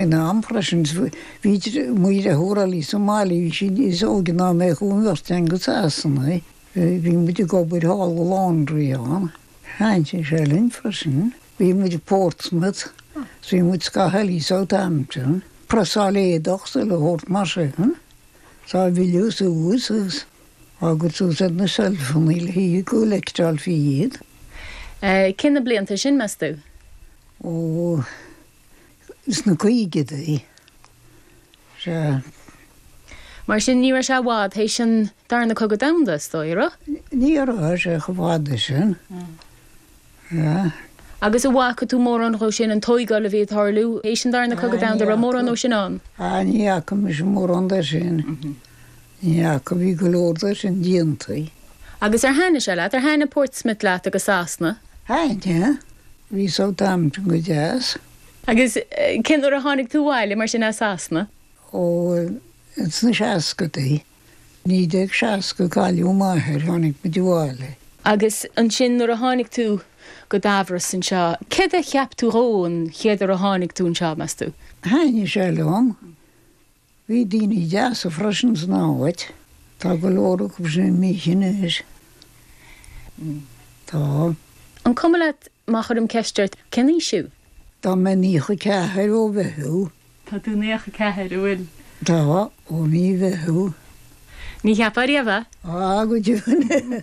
In am freisin, bhí mo dheirfiúr eile, Molly, bhí sí sin níos óige ná mé, chuaigh an bheirt againn go Sasana, bhí muid ag obair thall i laundry ann, thaitnigh sé sin linn freisin, bhí muid i Portsmouth, is bhí muid scaitheamh eile i Southampton, ag preasáil éadach, is chuile shórt mar sin, is á bhfilleadh suas agus tháinig suas ar na seilfeanna le haghaidh go gcollectálfaí iad. Cé na blianta sin, meas tú? Ó. sna caogaidí, sea. Mar sin, ní raibh sé i bhfad théis an Darna Cogadh Domhanda, is dóigh, a raibh? Ní raibh sé chomh fada sin, sea. Agus a bhfaca tú mórán dhó sin, an tóigeáil a bhí ag tarlú théis an Darna Cogadh Domhanda, a raibh mórán dhó sin ann? Ní fhaca mise mórán de sin. Ní fhaca, bhí go leor de sin déanta. Agus ar thaitnigh sé leat? Ar thaitnigh Portsmouth leat agus Sasana? Thaitnigh, bhí Southampton go deas. Agus cén uair a tháinig tú abhaile mar sin as Sasana? Ó, ins na seascadaí, 1960 cailleadh m'athair, tháinig muid abhaile. Agus ansin nuair a tháinig tú go Damhros anseo, céard a cheap tú dhó an chéad uair a tháinig tú anseo, meas tú? Thaitnigh sé liom, Bhí daoine deasa freisin san áit. Tá go leor acu sin imithe anois. Tá. An cuma leat má chuirim ceist ort cén aois thú? Tá mé naocha a ceathair ó Mheitheamh. Tá tú naocha a ceathair, an bhfuil? Tá, ó mhí Meitheamh. Ní cheapfá riamh é. Á, go deimhin.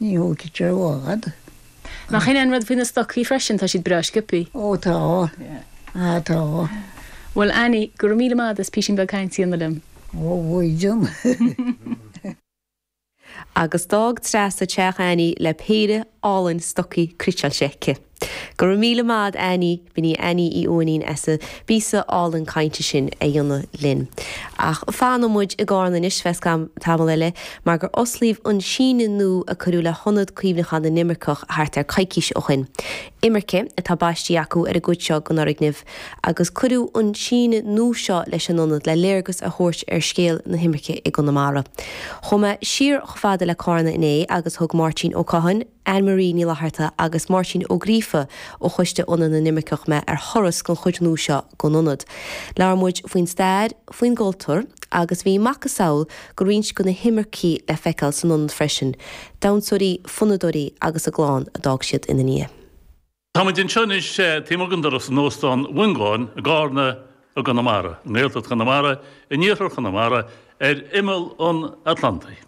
Ní thógfaidh sé lá fhada. Nach shin é an rud faoi na stocaí freisin, tá siad breá sciopthaí. Ó tá, á tá. Bhuel Annie, go raibh míle maith a'd as písín beag cainte a dhéanamh liom. Ó a Mhaighdean. Agus d'fhág Treasa teach Annie le péire álainn stocaí cniotáilte aici. Go raibh míle maith a'd Annie, b'in í Annie Uí Uaithnín as an bpíosa álainn cainte sin a dhéanamh linn. Ach fanfaidh muid i gCárna anois feadh tamall eile mar gur osclaíodh an síneadh nua a cuireadh le hIonad Cuimhneacháin na nImirceach thart ar coicís ó shoin. Imirce atá baistí acu ar an gcuid seo den fhoirgneamh agus cuireadh an síneadh nua seo leis an Ionad le léargas a thabhairt ar scéal na himirce i gConamara. Chuaigh mé siar chomh fada le Cárna inné agus thug Máirtín Ó Catháin, Anne Marie Ní Fhlatharta agus Máirtín Ó Gríofa ó choiste Ionad na nImirceach mé ar thuras den chuid nua seo den Ionad. Labhair muid faoin stair, faoin gcultúr agus bhí macasamhail de roinnt de na himircigh le feiceáil san Ionad freisin, damhsóirí, fonnadóirí agus a gclann a d'fhág siad ina ndiaidh. Tá muid anseo anois taobh amuigh den doras in Óstán Mhongáin i gCarna i gConamara, i nGaeltacht Chonamara, in iarthar Chonamara, ar imeall an Atlantaigh.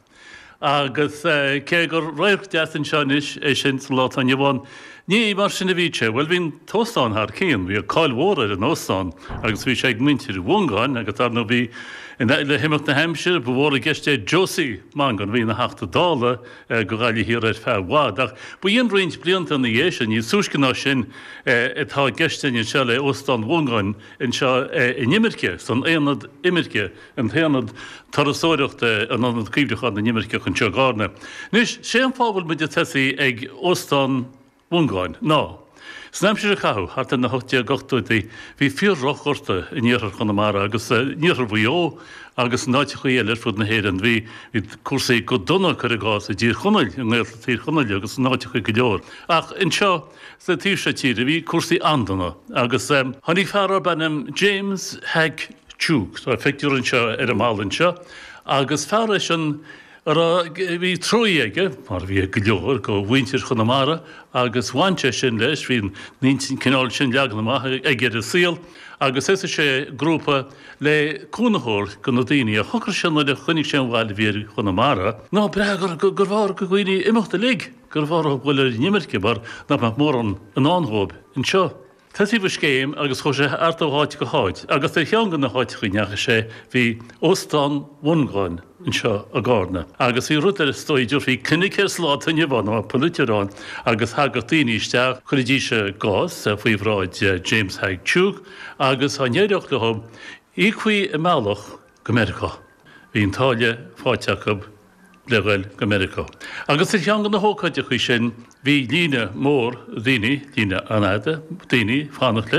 Agus cé gur radharc deas anseo anois é sin sa lá atá inniu ann, ní mar sin a bhí sé. Bhuel, bhí an t-óstán thar cionn, bhí cáil mhór ar an óstán agus bhí sé ag muintir Mhongáin agus dar ndóigh bhí, le himeacht na haimsire, ba mhór i gceist é Josie Mongan, a bhí ina Theachta Dála, do Ghaillimh Thiar ar feadh i bhfad, ach baineann roinnt blianta ina dhiaidh sin, níos túisce ná sin, atá i gceist linn anseo le hÓstán Mhongáin anseo in imirce, san aonad imirce, an t-aonad turasóireachta, in Ionad Cuimhneacháin na nImirceach anseo i gCarna. Anois, sé an fáth a bhfuil muid ag tosaí ag Óstán. Mhongáin, ná, san aimsir a caitheadh thart ar na hocht déag ochtóidí bhí fíor-dhroch-ghorta in iarthar Chonamara agus in iarthar Mhaigh Eo agus in áiteachaí eile ar fud na hÉireann. Bhí cúrsaí go dona, cuir i gcás, i dTír Chonaill, i nGaeltacht Thír Chonaill agus in áiteachaí go leor. Ach anseo sa taobh seo tíre bhí cúrsaí an-dona agus tháinig fear darb ainm James Hack Tuke, tá a phictiúr anseo ar an mballa anseo, agus fear eisean, a raibh trua aige, mar a bhí ag go leor de mhuintir Chonamara, agus bhain sé sin leis, bhí an cineál sin leagan amach aige ar an saol, agus thosaigh sé grúpa le cúnamh a thabhairt do na daoine agus shocraigh sé nuair a chonaic sé an bhail a bhí ar Chonamara. Ná b'fhéidir gurbh fhearr do dhaoine imeacht uilig, gurbh fhearr a dhul ar an imirce mar nach mbeadh mórán i ndán dhóibh anseo. Thosaigh an scéim agus chuaigh sé thart ó áit go háit agus ar cheann de na háiteacha a ndeachaigh sé bhí Óstán Mhongáin anseo i gCarna agus bhí rud ar ndóigh a dtabharfaí clinic air sa lá atá inniu ann, ag na polaiteoirí ann agus thagadh daoine isteach, chuiridís a gcás faoi bhráid James Hack Tuke agus dá n-éireodh leo, íocfaí a mbealach go Meiriceá. Bhí an táille faighte acu. le dhul go Meiriceá. Agus ar cheann de na hócáidí sin, bhí líne mór daoine, líne an-fhada daoine, ag fanacht leis.